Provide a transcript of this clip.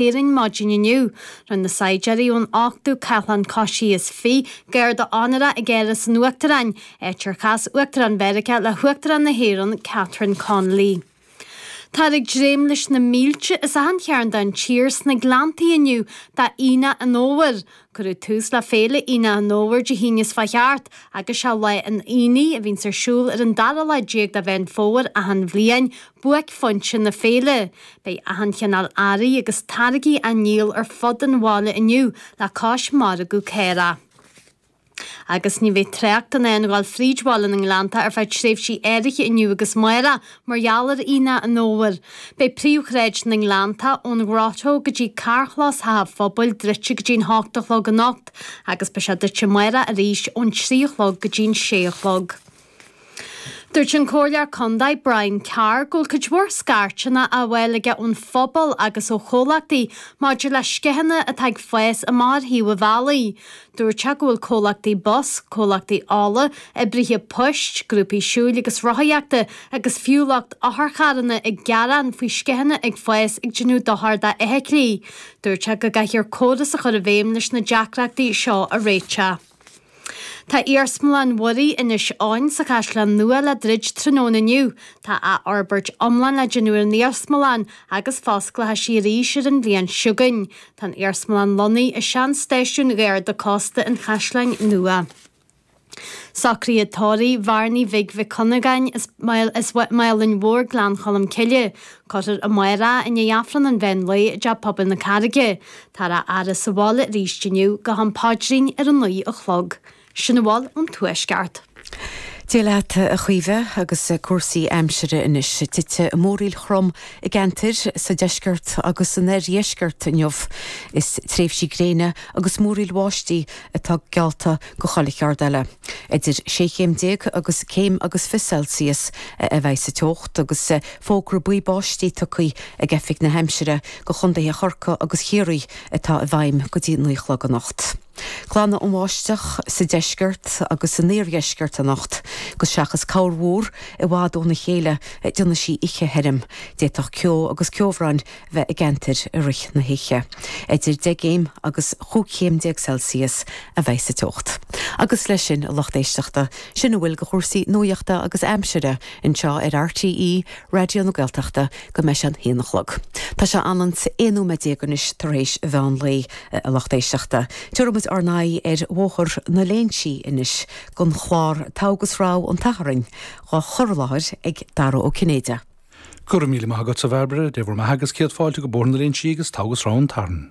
Éirinn maidin inniu. Rinne na saighdiúirí ón 8ú Cathlán Coisithe garda onóra ag Áras an Uachtaráin, áit ar chas Uachtarán Mheiriceá le hUachtarán na hÉireann, Catherine Connolly. Táthar ag dréim leis na mílte as achan chearn den tír sna Gleanntaí inniu d'Aonach an Fhómhair, Cuireadh tús le Féile Aonach an Fhómhair Dé hAoine seo a chuaigh thart, agus sé lá an aonaigh a bhíonns ar siúl ar an dara lá déag de Mheán Fómhair achan bhliain buaicphointe na féile. Beidh achan chineál earraí agus táirgí á ndíol ar fud an bhaile inniu le cois margadh caorach. Agus ní bheidh trácht in ann a ghoil fríd bhaile na nGleanntach ar feadh tréimhsí áirithe inniu agus amáireach Mar gheall ar Aonach an Fhómhair, beidh príomhshráid na nGleanntach ón nGrotto go dtí carrchlós Theach an Phobail druidte go dtí'n hocht a chlog anocht agus beidh sé druidte amáireach arís ón trí a chlog go dtí'n sé a chlog. Dúirt an Comhairleoir Condae Brian Carr go bhfuil cuid mhór scairteanna á bhfáil aige ón phobal agus ó chomhlachtaí maidir le sceitheanna atá ag fás amach ar thaobh an bhealaigh. Dúirt sé go bhfuil comhlachtaí bus, comhlachtaí ola, oibrithe poist, grúpaí siúil agus rothaíochta agus fiú lucht otharcharranna ag gearán faoi sceitheanna ag fás ag déanamh dochar d'fheithiclí. Dúirt sé go gcaithfear córas a chur i bhfeidhm leis na deacrachtaí seo a réiteach. Tá Iarsmalann Mhuirí Inis Eoghain sa Chaisleán Nua le druid tráthnóna inniu. Tá athfhorbairt iomlán le déanamh ar an iarsmalann agus fosclóchaidh sí arís ar an bhliain seo chugainn. Tá an iarsmalann lonnaithe i sean-stáisiún Gharda Cósta an Chaisleáin Nua. Socruithe tórraimh Bhearnaí Bhig Mhic Cuinneagáin as Málainn Mhóir Gleann Cholm Cille, cuirfear amáireach é, i ndiaidh Aifreann an Mheán Lae i dTeach Pobail na Carraige, táthar á fhaire sa bhaile arís inniu, go ham paidrín ar a naoi a chlog. Sin a bhfuil ón Tuaisceart. Dia leat a Chaoimhe agus cúrsaí aimsire anois. Titfidh múraíl throm i gceantair sa deisceart agus san iardheisceart inniu. Is tréimhsí gréine agus múraíl bháistí atá geallta do chuile cheard eile. Idir sé chéim déag agus céim agus fiche Celsius a bheidh sa teocht agus fógra buí báistí tugtha ag Oifig na hAimsire do chondaetha Chorcaí agus Chiarraí atá i bhfeidhm go dtí naoi a chlog anocht. Glanfaidh an bháisteach sa deisceart agus san iardheisceart anocht, agus seachas corrmhúr i bhfad óna chéile déanfaidh sí oíche thirim, d'fhéadfadh ceo agus ceobhrán a bheith i gceantair i rith na hoíche. Idir deich gcéim agus chúig chéim déag Celsius a bheidh sa teocht. Agus leis sin, a lucht éisteachta, sin a bhfuil de chúrsaí nuaíochta agus aimsire anseo ar RTÉ Raidió na Gaeltachta go mbeidh sé an haon a chlog. Tá sé ionann 's aon nóiméad déag anois tar éis an mheán lae. a lucht éisteachta. Tabharfaidh muid ár n-aghaidh ar Bhóthar na Léinsí anois don chlár Togha is Rogha an tSathairn dhá chur i láthair ag Dara Ó Cinnéide. Go raibh míle maith agat, a Bhairbre. Dé bhur mbeatha agus céad fáilte go Bóthar na Léinsí agus Togha is Rogha an tSathairn.